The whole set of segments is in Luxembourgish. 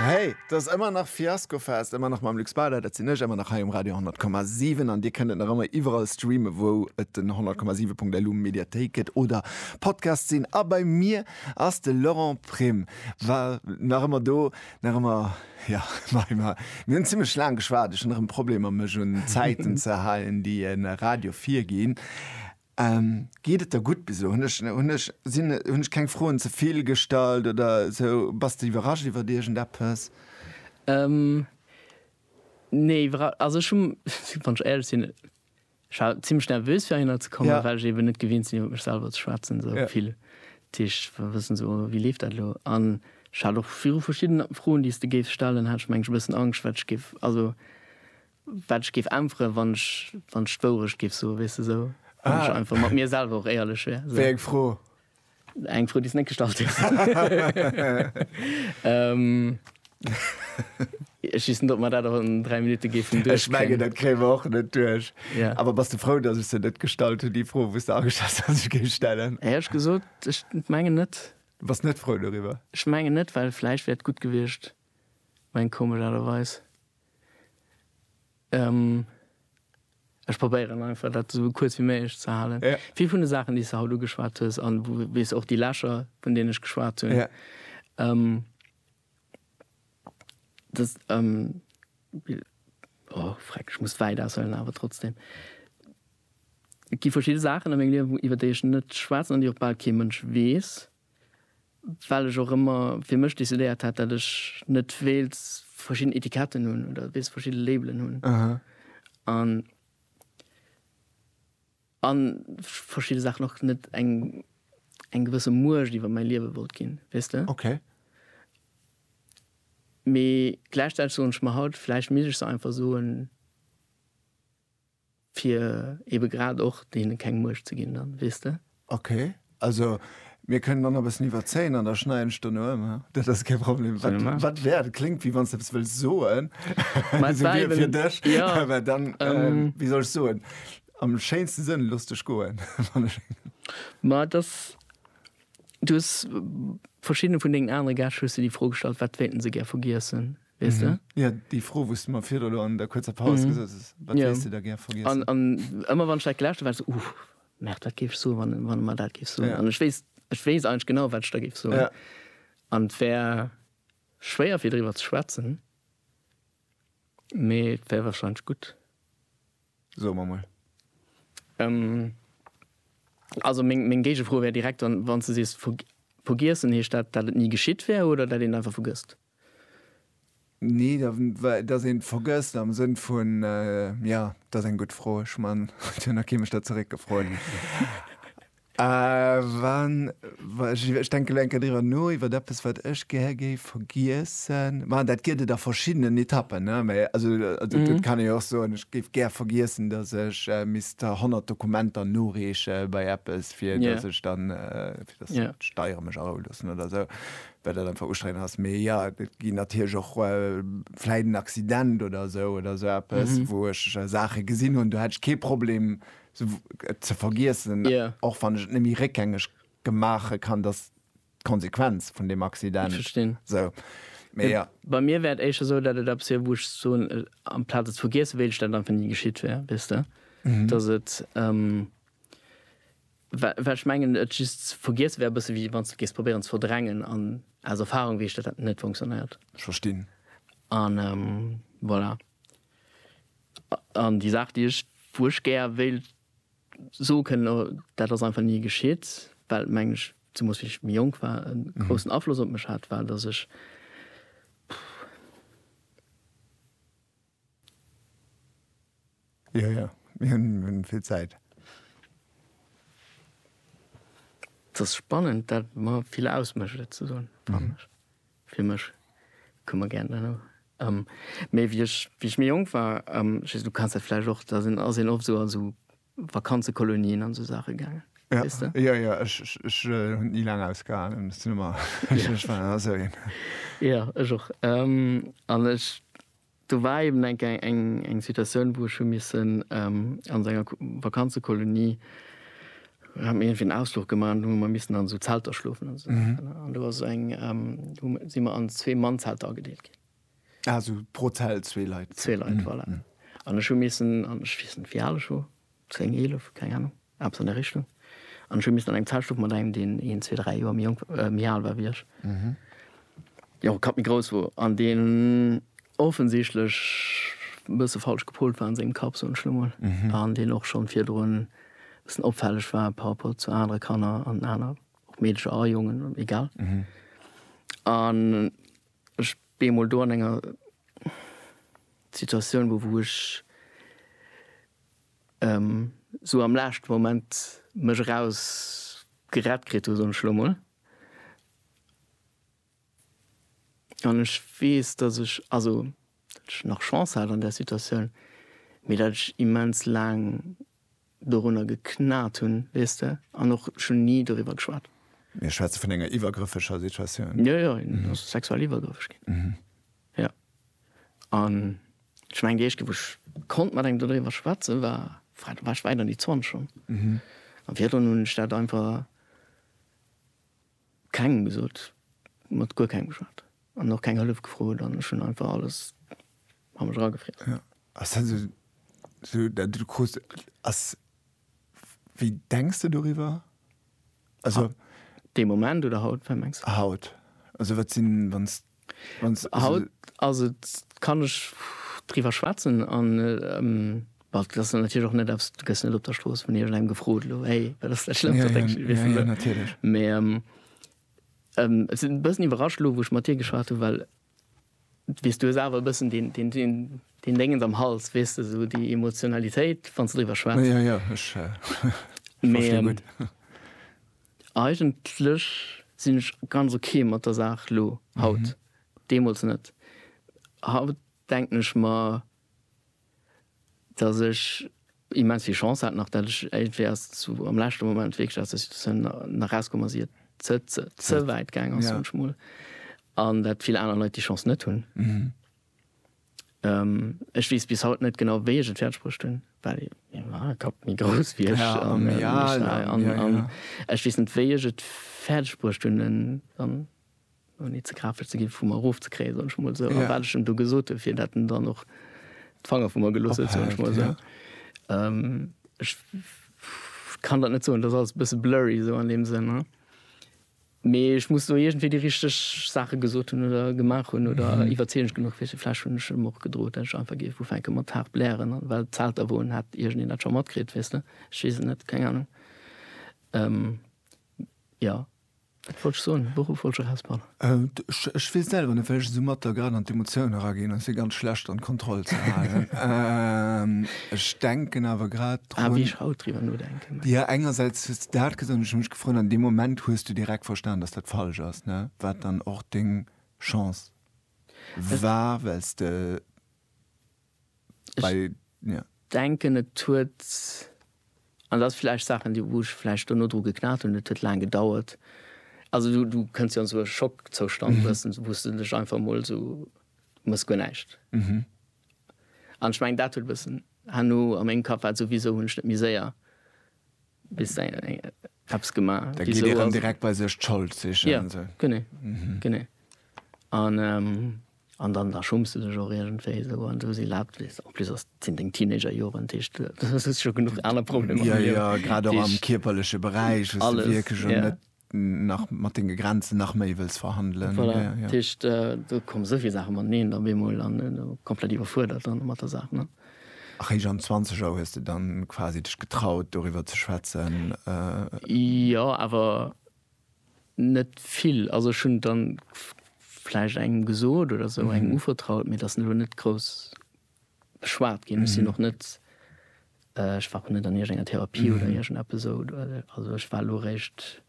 Hey, et ass ëmmer nach Fiaskofest, ëmmer nach mam Luc Spader, dat sinn ech, ëmmer nach hei um Radio 10,7 an Dir kënnt et nach ëmmer iwwerall streamen, wou et den 10,7.lu Mediathéik gëtt oder Podcast sinn. A bei mir ass de Laurent Prim, war nach ëmmer do, nach ëmmer ja, mei mer mir hunn zimmlech laang geschwat, ech hunn erëm Problemer mech un d'Zäiten ze halen, déi e Radio virginn. Geet et der gutt bis elo? Hunn ech keng Froen ze vill gestallt oder sou? Bass de iwwerrascht iwwert iergendeppes? Nee, iwwerrascht, also ech hu, wann ech éierlech sinn, ech war zimlech nervös fir heihinner ze kommen, well ech eben net gewinnt sinn iwwer mech selwer ze schwätzen sou vill. Dat heescht, wëll wëssen sou wéi leeft dat elo? An ech hat och viru verschidden Froen, déi s de géifs stellen, hat ech mengen ech e bëssen Angscht wat ech géif, also Wat ech géif äntweren, wann ech, wann ech d'Wourecht géif soen, weess de, esou, wann ech einfach mat mir selwer och éierlech wär, esou. Wéi eng Fro? Eng Fro, déi s de net gestallt hues. Ech weess net, ob mer dat och an dräi Minutte géifen duerchkréien. Ech mengen, dat kréie mer och net duerch. Yeah. Awer bass de frou, datt ech se net gestallt hunn, déi Fro, wou s de ageschat hues, datt ech géif stellen? Hei hu ech gesot, ech mengen net. Du bass net frou doriwwer? Ech mengen net, well vläicht wär et gutt gewiescht, meng komesch Aart a Weis. Ech probéieren einfach dat esou kuerz wéi méiglech ze halen. Vill vun de Saachen, déi s de haut ugeschwat hues, a wéi s och déi Lächer, vun deenen ech geschwat hunn, dass, o freck, ech muss wäit aushuelen, awer trotzdeem, et gi verschidde Saachen a mengem Liewen, iwwer déi ech net schwätzen an déi och bal kee Mënsch weess. Well ech och ëmmer fir mech decidéiert hat, datt ech net wéilt verschidden Etiketten hunn oder wéilt verschidde Labelen hunn. An a verschidde Saachen och net eng, eng gewësse Muecht iwwer mäi Liewe wollt ginn, weess de? Okay. Mee gläichzäiteg soen ech mer haut, vläicht misst ech se einfach soen. Fir ebe grad och deene keng Muecht ze ginn dann, weess de? Ok, also mir kënnen dann nach e bëssen iwwerzéien an da schneiden ech dono ëm, haa? Dat ass kee Problem. Wat, wat wär, dat kléngt wéi wann s de eppes wëlls soen, esou wéi fir dech, mä dann, wéi soll ech soen, am schéinste Sënn, looss dech goen, wann ech eng. Mä et ass, du hues verschiddene vun dengen anere Gäscht hues de déi Fro gestallt, wat wéilten se gär vergiessen? Weess de? Jo, déi Fro, wou s de mer virdru elo an der kuerzer Paus gesot hues, Wat wéilts de da gär vergiessen? An ëmmer wann ech dat gelauscht hunn, war et esou, Uff, Merde, wat géif ech soen, wann e mer dat géif soen? An ech weess, ech weess eigentlech genau, wat ech da géif soen. An et wär schwéier, fir driwwer ze schwätzen, mee et wär warscheinlech gutt. Soe mer mol. Also meng Géigefro wär direkt dann, wann s de sees, Vergiessen, heescht dat, dat et ni geschitt wär oder dat een einfach vergësst? Nee, da, dass een et vergësst am Sënn vun, jo, dat ass eng gutt Fro. Ech man, et huet nach kee mech der zeréckgefrot. Wann, ech denke lo eng Kéier driwwer no, iwwer eppes, wat ech gär géif vergiessen. Ma dat gëtt et a verschiddenen Etappen, ne? Mä also, dat kann ee jo och soen, ech géif gär vergiessen, dass ech misst 100 Dokumenter noreeche bei eppes, fir dass ech dann, fir dass d'Steiere mech arouloossen oder esou. well dat einfach ustrengend ass, mee jo, et ginn natierlech och vläit en Accident oder esou oder esou eppes, wou ech Saache gesinn hunn, do hätt ech kee Problem et ze vergiessen, och wann ech et net méi réckgängeg maache kann, dass d'Konsequenz vun deem Accident esou. Mee jo. Bei mir wär et éischter esou, datt et eppes wier, wou ech soen, amplaz et ze vergiessen, wéilt ech, datt et einfach ni geschitt wär, weess de, datt et Well ech mengen, et just ze vergiesse wär e bësse wéi wann s de géifs probéieren ze verdrängen. An aus Erfarung weess ech, datt dat net funktionéiert. Ech verstinn. An voilà. An déi Saach, déi ech, wou ech gär wéilt soe kënnen, o dat ass einfach ni geschitt, well, mengen ech, zemoos wéi ech méi jonk war, e groussen Afloss op mech hat, war, datt ech, pff. Jo, jo, mir hunn vill Zäit. Et ass spannend, dat mer vill ausmécht et ze soen, fannen ech. Fir mech, kucke mer gären dann och. Mee wéi ech, wéi ech méi jonk war, ech weess net, du kenns dat vläicht och, da sinn, ass een oft esou an esou Vakanzekolonien an esou Saache gaangen, weess de? Jo, jo, ech, ech hunn et ni laang ausgehalen, ech muss zougi-wen, ech war esou een. Jo, ech och. An ech, Do war eben eng Kéier eng Situatioun, wou ech hu missen a sou enger Vakanzekolonie, hat mir iergendwéi en Ausfluch gemaach an do hu mer missen an esou Zelter schlofen an esou Saachen. An do ass eng, hu mer, si mer an zwee Mannzelter agedeelt ginn. Ah, sou pro Zelt zwee Leit. Zwee Leit, voilà. An ech hu missen, an ech weess net, wéi al ech wor, 10, 11, keng Ahnung, eppes an där Richtung. An ech hu missen an engem Zelt schlofen mat engem, deen een, zwee, dräi Joer méi jonk, méi al war wéi ech, deen och e Kapp méi grouss wor an deen offensichtlech e bësse falsch gepolt war an sengem Kapp, soen ech lo mol, an deen och schonn virdrun e bëssen opfälleg war par rapport zu anere Kanner an aner, och Meedercher a Jongen, egal. An ech bee mol do an enger Situatioun, wou, wou ech. esou am laeschten Moment mech eraus gerett kritt hu soen ech elo mol, an ech weess dass ech, also dat ech nach Chance hat an där Situatioun, mee dat ech immens laang dorunner geknat hunn, weess de, an och schonn ni doriwwer geschwat. Mir schwätze vun enger iwwergrëffeger Situatioun? Jo jo, en ass sexuell iwwergrëffeg ginn. Jo. An ech mengen, déi éischt Kéier, wou ech konnt mat engem dodriwwer schwätzen, war, war, da war ech wäit an déi Zwanzeg. An virdrun hunn ech dat einfach kengem gesot, mat guer kengem geschwat an och keng Hëllef gefrot an ech hunn einfach alles a mech eragefriess. Jo. Ass dat esou, esou, dat du krus, ass, wéi denks de doriwwer? Also. Dee Moment oder haut, wat mengs de? Haut. Also wat sinn, wann s, wann s. Haut ass et, kann ech driwwer schwätzen an, bon, dat ass dann natierlech och net eppes, du gëss net op der Strooss vun iergend engem gefrot, elo, hey, wat ass dat Schlëmmst, wat denkst de? Jo, jo, jo, natierlech. Mee et sinn e bëssen iwwerrascht elo, wou ech mat dir geschwat hunn, well. Weess, du hues awer e bëssen deen Déngens am Hals, weess de, esou déi Emotionalitéit, wann s de driwwer schwätz. Jo, jo, ech verstinn gutt. Mee eigentlech sinn ech ganz ok mat der Saach elo, haut. Deemools net. Haut denken ech mer, dass ech immens vill Chance hat nach, dat ech iergendwéi erst zu am leschte Moment wierklech aus der Situatioun nach rauskomm ass, ier et ze ze wäit gaang ass, soen ech mol, an dat vill aner Leit déi Chance net hunn. Ech weess bis haut net genau, wéi ech et fäerdeg bruecht hunn, well mäi Kapp méi grouss wéi ech an ech weess net, wéi ech et fäerdeg bruecht hunn, en an ouni ze grafesch ze ginn, vu mer erof ze kréien, soen ech mol esou, a wat ech em do gesot hunn, fir dat en dann och d'Fanger vu mer gelooss huet, soen ech mol esou. Ech kann dat net soen, dat ass alles e bësse blurry esou an deem Sënn. Mee ech muss do iergendwéi déi richteg Saache gesot hunn oder gemaach hunn oder iwwerzeegend genuch fir se. Vläch hunn ech em och gedroot, dat ech einfach géif ufänke mat haart blären, an well d'Zelt da woen, hätt iergendeen dat scho matkritt, weess de. Ech weess et net, keng Anung. Jo, Wat wollt ech soen? De Beruff wollt ech erausbannen. Ech weess selwer net, well ech esou matt da grad an d'Emotioun eraginn. Et ass jo ganz schlecht, dann d'Kontroll ze halen. Ech denken awer grad drun. A wéi ech haut driwwer nodenken. Jo, engersäits hues de dat gesot an ech hu mech gefrot, an deem Moment hues du direkt verstan, datt dat falsch ass, ne? Wat dann och deng Chance war, well s de. Ech denken, et huet, an dat ass vläicht Saachen, déi, wou ech vläicht duerno dru geknat hunn, et huet laang gedauert. Also du, du kënns jo an esou e Schockzoustand, wou s de, wou s de dech einfach emol esou, du mëss guer näischt. An ech mengen, dat huet e bëssen, herno a mengem Kapp war et esou, Wisou hunn ech net méi séier bis eppes gemaach? Da geet ee rëm direkt bei sech d'Schold sichen. Jo, genee, genee. An An dann da schumms de dech och iergendwéi esou an esou si laabt, weess de. En plus ass, sinn deng Teenager-Joren, dat heescht, du hues scho genuch aner Problemer am Liewen. Jo, jo, grad och am kierperleche Beräich, wou s de wierklech jo net nach mat denge Grenzen nach méi wëlls verhandelen. Voilà, dat heescht, do komme sou vill Saache mateneen op eemol an komplett iwwerfuerdert dann mat der Saach, ne. Eréischt an Zwanzeger hues de dann quasi dech getraut, doriwwer ze schwätzen? Jo, awer Net vill, also ech hunn der vläicht engem gesot oder esou, engem uvertraut, mee et ass elo net grouss beschwat ginn. Ech sinn och net, ech war och net an iergengenger Therapie oder iergendeppes esou. Also ech war elo eréischt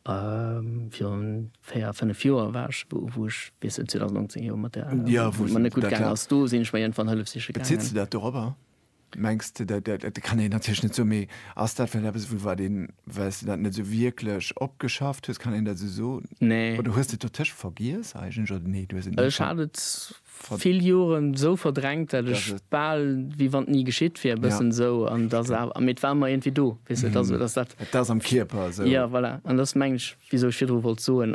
virun véier, fënnef Joer war ech, wou ech bis 2019 jo mat där, wou et mer net gutt gaangen ass, do sinn ech mer iergendwann Hëllef siche gaangen. Bezitt se dat dorobber? Mengs de, dat, dat, dat kann een natierlech net soen, mee ass dat vläicht eppes, wou wat een, well s de dat net esou wierklech opgeschafft hues, kann een dat esou soen? Nee. Oder hues de et dotëscht vergiess eigentlech, oder nee, du hues et ni. Ech hat et vill Joren esou verdrängt, dat ech bal wéi wann et ni geschitt wier, e bëssen esou. An et ass awer, mee et war ëmmer iergendwéi do, weess de, et ass, et ass dat. Et ass am Kierper esou. Jo, voilà. An dat ass, mengen ech, wisou ech virdru wollt soen,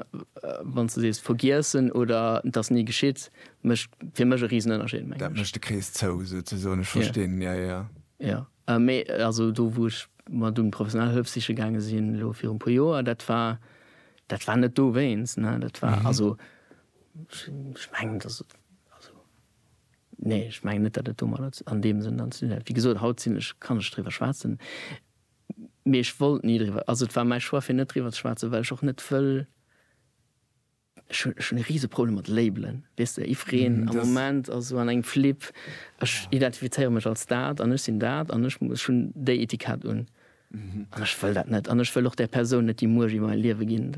wann s de sees vergiessen oder et ass ni geschitt, mécht fir mech e Risenënnerscheed, mengen ech. Dat mécht de Krees zou, souzesoen. Ech verstinn, jo, jo. Jo, mee also do, wou ech mer dunn professionell Hëllef siche gaange sinn, elo viru e puer Joer, dat war, dat war net dowéinst, ne. Dat war also, ech mengen, dass et also, nee, ech mengen net, datt et domadder an deem Sënn dann ze dinn hätt. Wéi gesot, haut sinn ech, kann ech driwwer schwätzen, mee ech wollt ni driwwer, also et war mäi Choix, fir net driwwer ze schwätzen, well ech och net wëll, Ech hun ech hun e riese Problem mat Labelen, weess de, jiddfereen am Moment ass esou an engem Flip, ech identifizéiere mech als dat an ech sinn dat an ech muss, ech hunn déi Etikett un an ech wëll dat net an ech wëll och där Persoun net déi Muecht iwwer mäi Liewe ginn,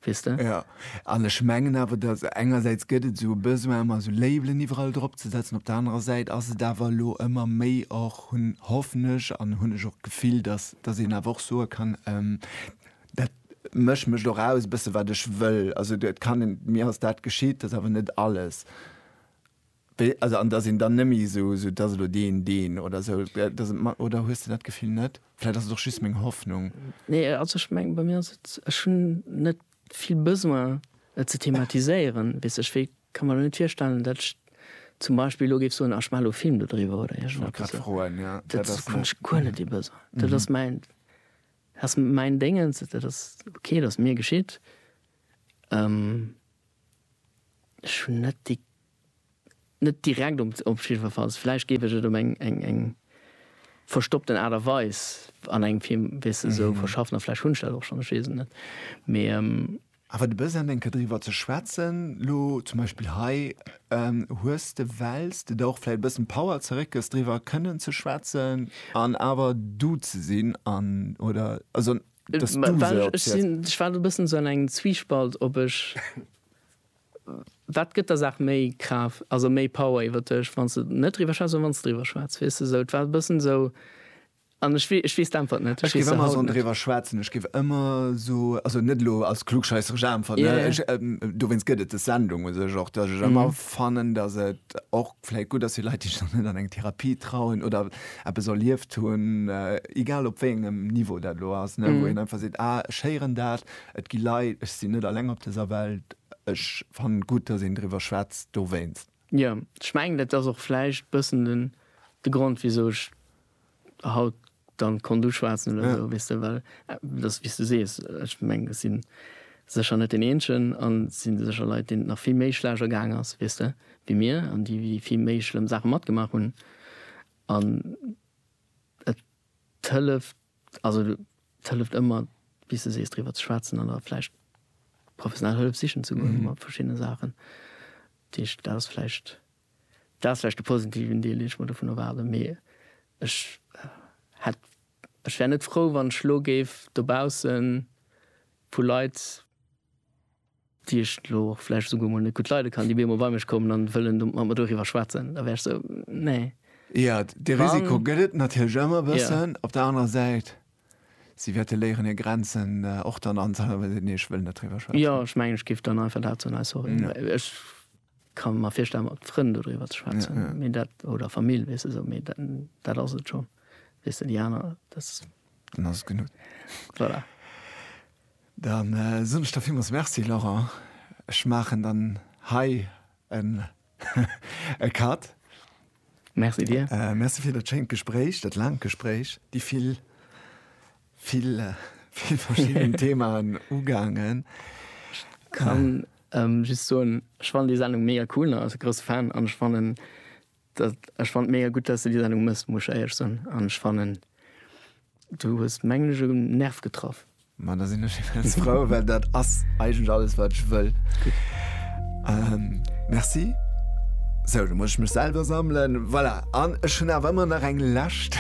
weess de. Jo, an ech mengen awer, datt engersäits gëtt et esou e Besoin ëmmer esou Labelen iwwerall drop ze setzen, op der anerer Säit ass et awer elo ëmmer méi och, hunn, hoffen ech an hunn ech och d'Gefill, datt, datt een awer och soe kann, Dat mécht mécht och aus e bësse wat ech wëll. Also et kann een, mir ass dat geschitt, dat ass awer net alles. Wéi, also an datt een dann net méi esou esou, dat ass elo deen, deen oder esou, datt et mer, oder hues de dat Gefill net? Vläicht ass et och just meng Hoffnung. Nee, also ech mengen, bei mir ass et, ech hunn net vill Besoin et ze thematiséieren, weess ech, wéi ka mer elo net virstellen, datt ech zum Beispill elo géif soen, ah ech maachen elo e Film dodriwwer oder Wollt grad iergendepes. froen, jo. Dat Dat ass kann net. ech guer net dee Besoin. Dat ass mäin. Ass mäin Déngens, dat ass ok, dat ass mir geschitt. Ech hunn net déi, net direkt op op jiddwerfalls, vläicht géif ech et op eng eng eng verstoppten Aart a Weis an engem Film, weess de, esou verschaffen a vläicht hunn ech dat och schonn, ech weess et net. Mee. Awer de Besoin eng Kéier driwwer ze schwätzen, lo zum Beispill hei, hues de, wells de der och vläicht e bëssen Power zeréckgëss, driwwer kënnen ze schwätzen an awer du ze sinn an, oder, also dass du se opziels. Ech war elo e bëssen esou an engem Zwiespalt, ob ech, wat gëtt der Saach méi Kraaft, also méi Power iwwer dech, wann s de net driwwer schwätz oder wann s de driwwer schwätz, weess de, esou. Et war e bëssen esou, An ech wee, ech weess d'Äntwert net. Ech géif ëmmer esou driwwer schwätzen, ech géif ëmmer esou, also net elo als klugscheisseresch Äntwert, ne, ech, dowéinst gëtt et des Sendung u sech och, datt ech ëmmer fannen, datt et och vläit gutt ass fir Leit, déi sech nach net an eng Therapie trauen oder eppes erlieft hunn, egal op wéi engem Niveau dat elo ass, ne, wou een einfach seet, ah, ech héieren dat, et gi Leit, ech sinn net alleng op dëser Welt, ech fannen et gutt, datt een driwwer schwätzt dowéinst. Jo, ech mengen, dat ass och vläicht bëssen de Grond, wisou ech haut dann konnt uschwaatzen oder sou weess de well dass wéis de sees ech mengen ech sinn sécher net deen eenzegen an et sinn sécher Leit deenen et nach vill méi schlecht ergaang ass weess de wéi mir an déi wéi vill méi schlëmm Saachen matgemaach hunn an et hëlleft also et hëlleft ëmmer wéis de sees driwwer ze schwaatzen an da vläicht professionell Hëllef sichen ze goen mat verschiddene Saachen dat ass vläicht. Dat ass vläicht de positiven Deel, deen ech mer dovun erwaarden. Mee ech hätt, ech wär net frou, wann ech elo géif dobausse vu Leit, déi ech elo och vläicht esouguer emol net gutt leide kann, déi op eemol bei mech kommen a wëllen do mat mer doriwwer schwätzen. Da wär ech esou, nee. Jo, dee Risiko gëtt et natierlech ëmmer e bëssen. Op der anerer Säit, si wäerte léieren, hir Grenzen och dann anzuhalen, wa se soen, nee, ech wëll net driwwer schwätzen. Jo, ech mengen, ech géif dann einfach dat soen, Ey, sorry, ech. Kann mer virstellen mat Frënn do driwwer ze schwätzen, mee dat oder Famill weess de sou, mee dat dat ass et schonn weess de déi aner dat. Dann ass et genuch. Voilà. Dann soen ech der villmools Merci Laurent. Ech maachen dann hei en e Cut. Merci dir. Merci fir dat schéint Gespréich, dat laangt Gespréich. Déi vill, vill, vill verschidden Themaen ugaangen. Ech kann just soen, ech fannen déi Sendung mega cool an als grousse Fan an ech fannen dat, ech fannen et mega gutt, dass de déi Sendung mëss, muss ech éierlech soen an ech fannen du hues, mengen ech, e Nerv getraff. Ma da sinn ech immens frou, well dat ass eigentlech alles, wat ech wëll. Merci. Sou, da muss ech mech selwer sammelen. Voilà, an ech hunn awer ëmmer nach eng lescht,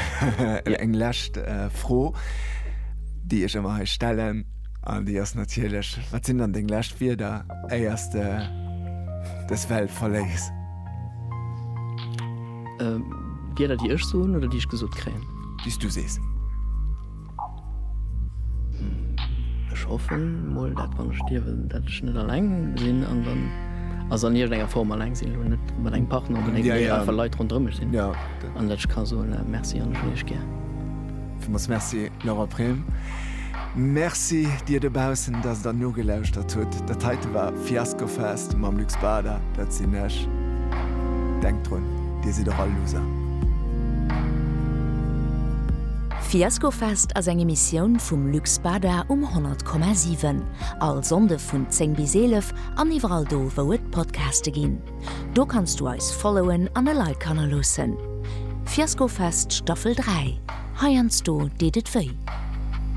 eng lescht Fro, déi ech ëmmer hei stellen, an déi ass natierlech, Wat sinn dann deng lescht Wierder, éier s de dës Welt verléiss? Wierder, déi ech soen oder déi ech gesot kréien? Déi s du sees. Ech hoffen mol dat wann ech stierwen dat ech net alleng sinn an dann also an iergendenger Form alleng sinn, elo net mat engem Partner oder néngem, mee einfach Leit ronderëm mech sinn an dat ech ka soen Merci an ech hunn iech gär. Villmools Merci Laura Brehm. Merci dir dobaussen, dass der nogelauschtert hutt. Dat heite war Fiasco Fest mam Luc Spada, dat sinn ech. Denkt drun, dir sidd och all Loser. D'Fiaskofest ass eng Emissioun vum Luc Spada um 100,7. All Sonnde vun 10 bis 11 an iwwerall do wou et Podcaste ginn. Do kanns du eis followen an e Like hannerloossen. Fiaskofest Staffel 3, heiansdo deet et wéi.